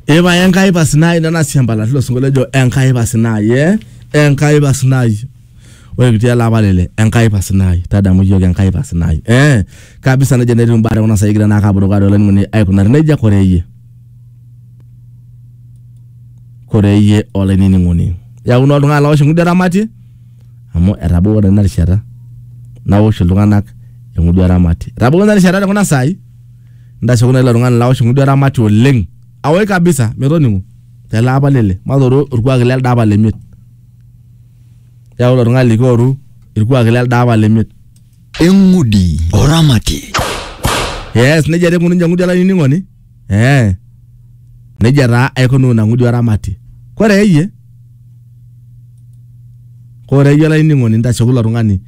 Ipae Enkai pasinai nena siambalati ilo sinkolio ejo Enkai pasinai eh? Enkai pasinai. Ore kitii ele apa lele Enkai pasinai tadamu iyiook Enkai pasinai eh? Kabisa nejia netiu imbaa tekuna saai kigira naa ake apurukaa tolainining'oni aikunari nejia kore iyie kore iyie olainining'oni yaku naa oltung'ani lawosh eng'udi eramati amu etabawua naa ina rishata nawosh iltung'anak eng'udi eramati etabawua ina rishata tekuna saai ntasho naa ilo tung'ani laosh ng'udu eramati oleng awoi kabisa metoning'o tele apa lele matoru orkuak lelde apa le miet yau ilo tung'ani likioru irkuaki lelde apa le miet eng'udi oramati yes nejia taa eikununye ng'udi olainining'oni eh nejia taa aikunuu ina ng'udi oramati kore eyie Ore iyie olainining'oni ntasho kulo tung'ani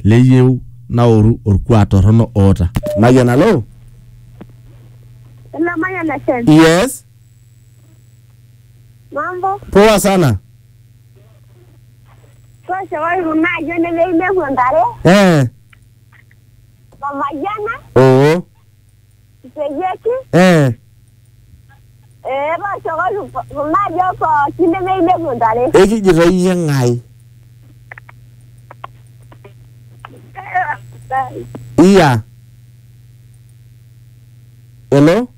leyieu naoru orkuak torrono oota. Mayian alo? Hello, Mayan FM. Yes. Mambo? Poa sana. Tooshokoki kuna ayiok nemeyieu nepuo ntare. Eh. Mamayiana. Oo. Iteyieki, eh, ee tooshokoki kuna ajo pooki nemeinepu ntare. ekijito iyie ng'ae iya hello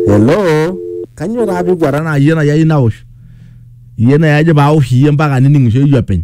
hello kanyoo taa pikwata naa iyie nai ayieu nawosh iyie nai ajo pawosh iyie mpaka nining'ishoyu openy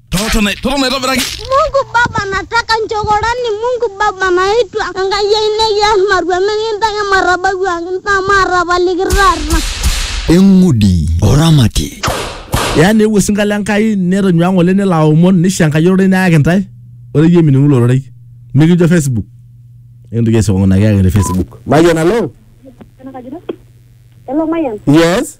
Toto na toto na toto na Mungu Baba nataka nchokorani Mungu Baba naitwa Enkai ai nekias marua mikintaki marabaku ang ntaa maarapaliki taata. eng'udi oramati yaa neewuo osinka le Nkai netonyua ng'ole nelo aomon nisho Enkai ororei neyaki ntae ore iyie mining'u ilo rorei mikijo Facebook entoki esiokong'u naa kiyaki te Facebook Mayian alo Hello, Mayan. yes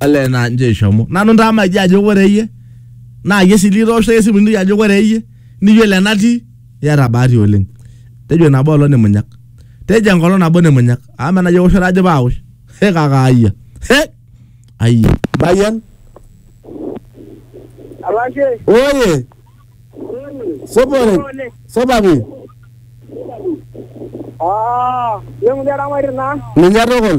ole naa nje ishomo nanu ntamaji ajo ore iyie naa iyie sii litoosho esimu niliki ajo ore iyie niyiolo enatii iyata bahati oleng tejo nabo olong nimunyak tejo enkolong nabo nimunyak amu menajo eoshoto ajo paawosh he kaka ayia he ayia bayian Alashe. oye sopore sopapi Ah, leng'u eramarita naa. ninye tukul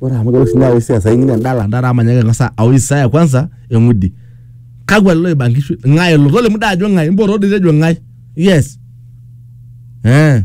Ore amu kelotu sinye aosh siasa ing'ini endala ndara amu manyaaki ang'asa aosh Isaya kwanza eng'udi. Kakwa lelo oiba nkishu? Ng'ae elo? Tolimu dai ajo ng'ae? Mboto doi tejo ng'ae? Yes. Eh.